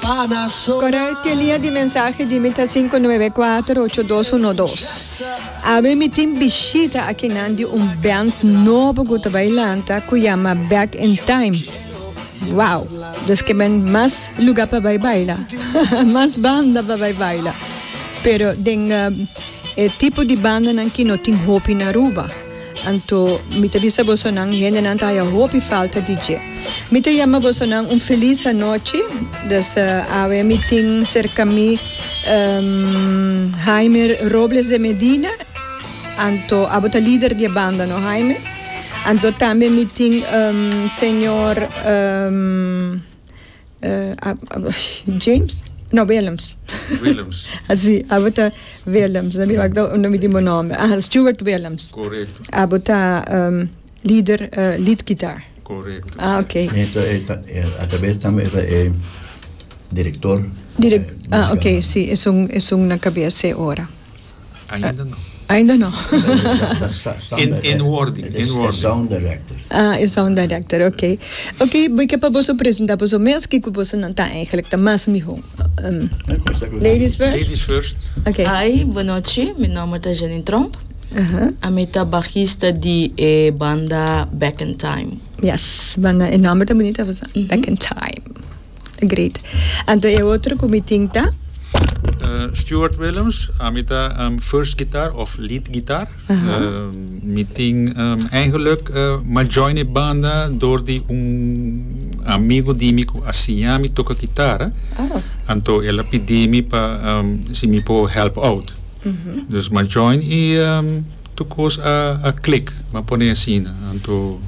Kòrda te lia di mensahe dimi ta sinku nuebe kuater ocho dos uno dos. Awe mi tin bishita akinan di un band nobo ku ta bai lanta ku yama Back in Time. Wow! Des ke men mas luga pa bai baila. Mas banda pa bai baila. Pero den e tipo di bandanan ki no tin hopi na Aruba. Anto mi ta bisa boso nan hendenan ta haya hopi falta di dje. Mi ta yama boso nan un felis anochi. Dus awe mi tin serka mi Haimer Robles de Medina, anto abo ta lider di e banda no Haimer. Anto tambe mi tin señor. James? No, Willems. Willems. Así, abo ta Willems. Na mi wak da un mi di mo nombre. Aha, Stuart Willems. Correcto. Abo ta um, leader, uh, lead guitar. Correcto. Ah, ok. Eta, eta, atabes tambe eta e director. Direct, ah, ok, si, es un, es un na cabeza e ora. Ainda no. Ainda no. en wording, en wording. E sound director. Ah, e sound director, ok. Ok, bo ke pa boso presenta boso mes, kiko boso nan ta eigenlijk ta mas miho. Um, ladies first? Ladies first. Ok. Hi, bo nochi, mi nomber ta Janine Tromp. Uh -huh. Ami ta bajista di e banda Back in Time. Yes, banda, e nomber ta bonita, Back in Time. Great. Anto e otro cu mi tin ta? Stuart Willems, ami ta first guitar of lead guitar. Aha. Mi tin eigenlijk ma join e banda door di un amigo di mi cu a siña mi toca guitarra. Oh. Anto el a pidi mi pa si mi por help out. Dus ma join y. Tur cos a a click, m'a pone asina, anto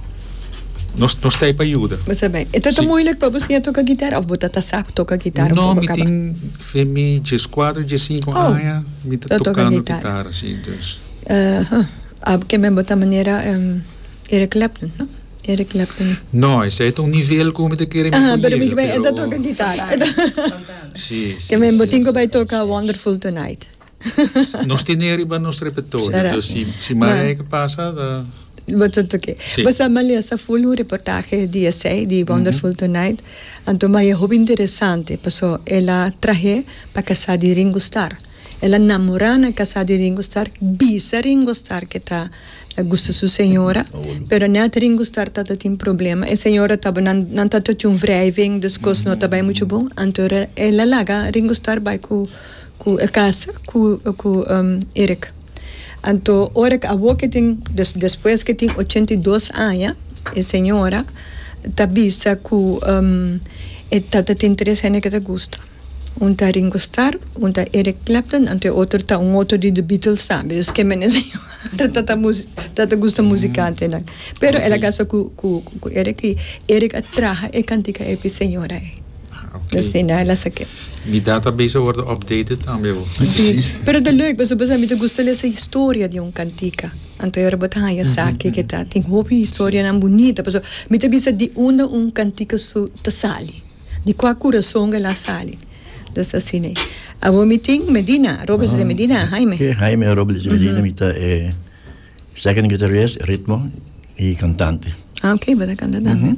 nos nos t'ai pa yuda. Bo sa bay. E ta ta moeilijk pa bo siña toca guitarra of bo ta ta sap toca guitarra of bo No, mi caba? tin fe mi djes cuater, djes cinco Oh, aña mi ta ta toca tocando guitarra. guitarra, si. Dus, Eh, ha, a bo kembe bo ta manera em Eric Clapton, no? Eric Clapton. No, esei ta un nivel cu mi ta kere mi Aha, por pero mi yega, kiba e ta pero toca guitarra. Si, si, Kembe bo si, tin cu si, bay toca si. Wonderful Tonight? Nos tene riba nos repertorio, dus si si marea e ke pasa ta. Bo ta toke. Si. Bo sa Malia sa ful un reportahe di esei, di Wonderful Tonight, anto Maia hopi interesante paso el a trahe pa kasa di Ringo Star. El a namora na kasa di Ringo Star, bisa Ringo Star ke ta ta gusta su señora, pero net Ringo Star ta ta tin problema, e señora tabo nan nan ta ta tjun wrijving, dus kos no ta bai muchu bon, anto el a laga Ringo Star bai ku cu e casa cu cu Erick anto ora ke awo ke tin des despues ke tin ochenta i dos aña e señora ta bisa cu e ta ta tin tres hende ke ta gusta un ta Ringo Starr un ta Erick Clapton anto e otro ta un otro di The Beatles sa be dus ke mene señora ta ta mus ta ta gusta musicantenan pero el a casa cu cu cu Erick y Erick a traha e cantica ey pi señora ey. Oké. Sin hay la sa ke. Mi database a wordo updated tambe bo. Sí, pero ta leuk pasobra esaki mi ta gusta lesa historia di un cantica. Anto ora bo ta haña esaki ke ta tin hopi historianan bunita paso mi ta bisa di unda un cantica su ta sali, di kua curason el a sali. Entonces asina ei. Awor mi tin Medina, Robles de Medina, Haime. Haime Robles de Medina mi ta e. Second guitarist, ritmo y cantante. Ah ok, bo ta canta tambe.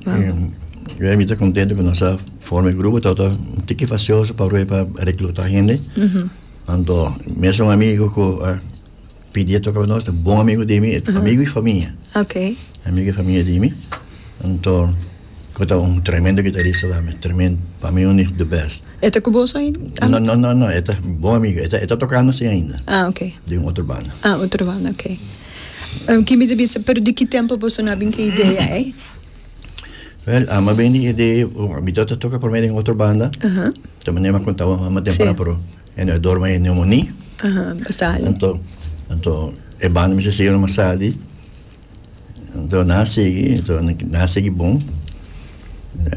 Wow. Y yo e mi ta contento cu nos a forma e grupo, tawata un tiki facioso pa rui pa recluta hende. Anto mes un amigo cu a pidia toca pa nos, ta bon amigo di mi, amigo y famia, Ok. amigo y famia di mi. Anto Cu ta un tremendo guitarista tambe, tremen, pa mi un the best. E ta cu bos ay? No, no, no, no, e ta bon amigo, e ta, e ta tocando sin ainda. Ah, ok. Den un otro banda. Ah, otro banda, ok. Um, ki mi ta bisa, pero di ki tempo boso no a bin cu e idea ey? Wel, ama bin di idea, mi ta ta toca prome den otro banda, Aha, ta mane ma conta bo ama temprano, Sí. pero e no e dorma e neumonia, aha, basali. anto, anto e banda mi sa sigue no ma sali, Anto nan a sigui, anto nan a sigui bon.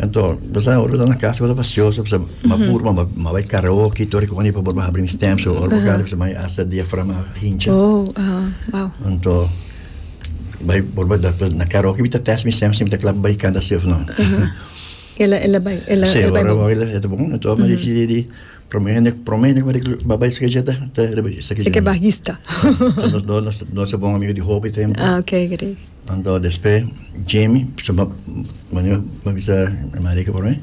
Anto, basta ora ta na casa, basta pasioso, basta ma pur, ma, ma bai karaoke, tori koni pa borba habri mi stem, so ora bocado, basta mai hasta diafragma hincha. Oh, aha, wow. Anto, bai borba da, na karaoke bita test mi stem, si bita klap bai kanta si of no. Ela, ela bai, ela, Sí, ela bai ahora bon. voy a hacer bon. Entonces, me decide de Prome hende prome hende ku bai bai bai seke jeta ta rebeli seke jeta. Seke bajista. so nos do nos nos bon amigo di hopi tempo. Ah, okay, gri. Dan do despe Jamie, so ma mani ma bisa Marika por mi.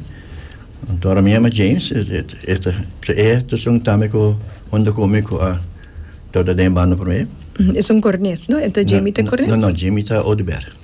Dan tora mi ama James, eta e to son tame ko hondo ku mi ku a to ta den banda por mi. Esun kornes, no? Eta Jamie ta kornes? No, no, Jamie ta Oduber.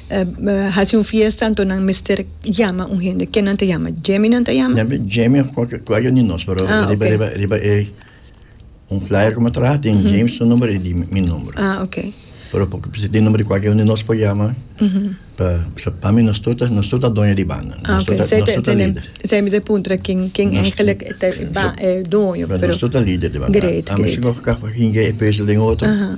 hasi un fiesta anto nan mester yama un hende. Kenan ta yama? Djeminan ta yama? Djemi of kualke kualke di nos, pero ah, riba, okay. riba, riba e un flyer como traha tin mm -hmm. James su nombre y mi nombre. Ah, okay. Pero porque pues, di nombre kualke un di nos po yama, mm -hmm. pa, so, pa mi nos tuta, nos tuta doña di banda. Ah, nos okay. tuta, nos tuta líder. Zij me de puntra kin, kin nos, eigenlijk te, ba, so, eh, doño. Pero, pero nos tuta líder di banda. Great, great. A mi si kaka hinge e pezel den otro. Uh -huh.